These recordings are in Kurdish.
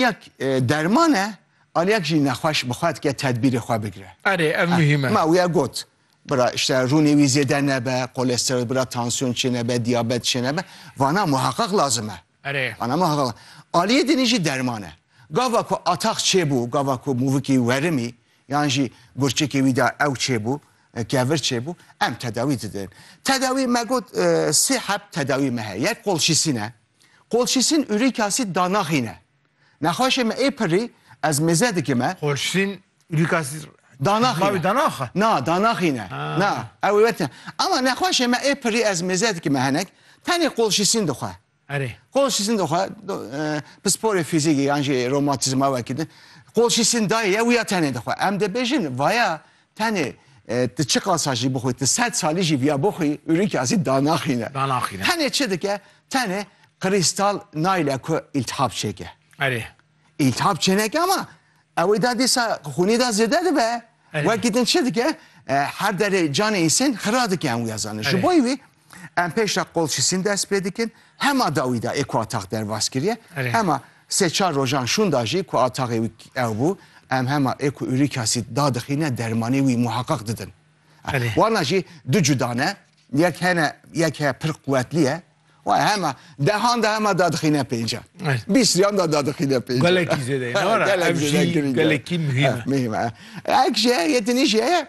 Yek derman e, aliyek jî nexweş bi xwe dike tedbîrê xwe bigire. Erê, ev muhîm e. Ma wiya got, bira îşte rûnê wî zêde nebe, kolesterol bira tansiyon çênebe, diyabet çênebe, vana muheqeq lazim e. Erê. Vana muheqeq. Aliyê dinî jî derman e. Gava ku atax çêbû, gava ku mûvikî werimî yan jî gurçikê wî de ew çêbû, kevir çêbû, em tedawî didin. Tedawî me got sê heb tedawî me heye. Yek qolşîsîn e. Kolçîsîn ûrîkasît da naxîne. Nexweşê me ê pirrî ez mêze dikime. Kolçîsîn ûrîkasît da naxîne. Na, da naxîne. Na, ew ê wete. Ama nexweşê me ê pirrî ez mêze dikime henek, tenê kolçîsîn dixwe. Erê. Kolçîsîn dixwe, pisporê fîzîkî yan jî romatîzma wekî di. Kolçîsîn dayê ye û ya tenê dixwe. Em dê bêjin vaya Tenê tu çiqasa jî bixwî, tu sed salî jî viya bixwî, Ulrike asî danaxîne. Danaxîne. Tenê çi dike? Tenê Krîstal nayle ku îltihab çêke. Erê. Îltihab çêneke ama ewê da dîsa xûnê da zêde dibe. Wekî din çi dike? Her derê canê însan xira dike em wî ya zanin. Ji bo wî Em pêşta qolçisîn dest pê dikin, hema dawî da ê ku atax derbas kiriye, hema sê çar rojan şûnda jî ku ataxê wî ew bû, em hema ê ku urîkasîd dadixîne dermanê wî muheqeq didin. Wana jî du cuda ne, yek hene yek heye pir quwetlî ye, Waya hema dehan da hema dadixîne pêncan. Bîst riyan da dadixîne pêncan. Gelekî zêde ye. Gelekî muhîm e. Muhîm e. Ek jî heye yê dinî jî heye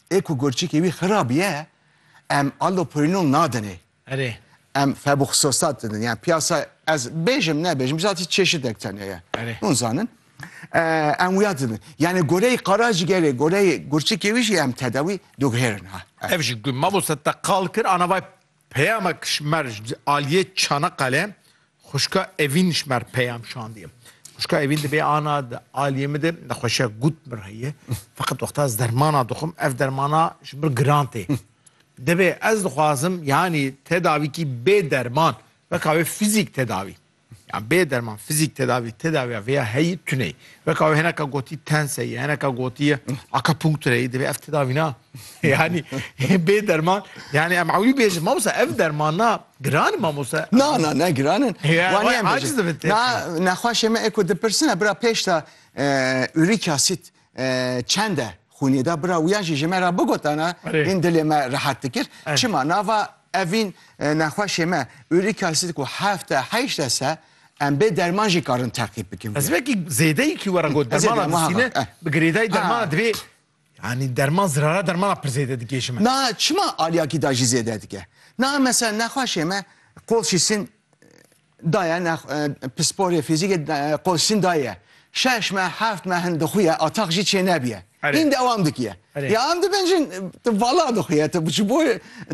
ê ku gurçikê wî xirab ye em allopurinol nadinê. Erê. Em febuxostat didin. Yani piyasa ez bêjim nebêjim bizatî çeşidek tene ye. Erê. Hûn zanin. Eh, em wiya didin. Yani goreyê qaracigerê, goreyê gurçikê wî jî em tedawî diguhêrin ha. Ev jî ku mamoste te qal kir anavay Peyama Kişmer ji aliyê Çanaqale xwişka Evîn ji me re peyam şandiye. Xwişka Evîn dibê ana di aliyê min de nexweşiya gut min re heye. Feqet wexta ez dermana dixwim ev dermana ji min giran tê. Dibê ez dixwazim yanî tedavîkî bê derman weka wê fîzîk tedavî. Yan bê derman fizîk tedavî tedaviya vêya heyî tuneyî. Weka wê heneka gotî tenseyî, heneka gotî akapunktureyî divê ev tedavî na. Yanî bê derman yanî em ewlî bêjin mamosa ev derman na giran mamosa. Na na ne giran in. Wanî em bêjin. Na nexwaşê me eko dipirsine bira pêş de ûrîk asit Çende xûnê da bira wiya jî ji me ra bigotana hîn dilê me rehet dikir. Çima nava evîn nexweşê me uric acid ku hefte heyşte se em bê derman jî karin teqîb bikin. Ez vekî zêdeyekî were got dermana distîne bi girêdayî dermana divê Yanî derman zirara dermana pir zêde dikê ji me. Na çima aliyakî da jî zêde dike. Na mesela nexweşê me qolşî sin Daye ne pisporê fîzîkê qolsîn daye. Şeş meh, heft meh hin dixuye a tex jî çênebîye. Hîn dewam dikiye. Ya em dibin jin tu vala dixuye tu ji bo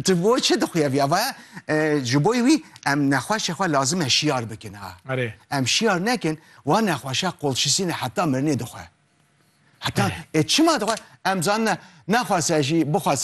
tu bo çi dixuye viya vaye ji bo wî em nexweşê xwe lazim e şiyar bikin ha. Em şiyar nekin wa nexweşa qolşîsîne heta mirinê dixwe. Heta ê çima dixwe em zanine naxwase jî bixwase.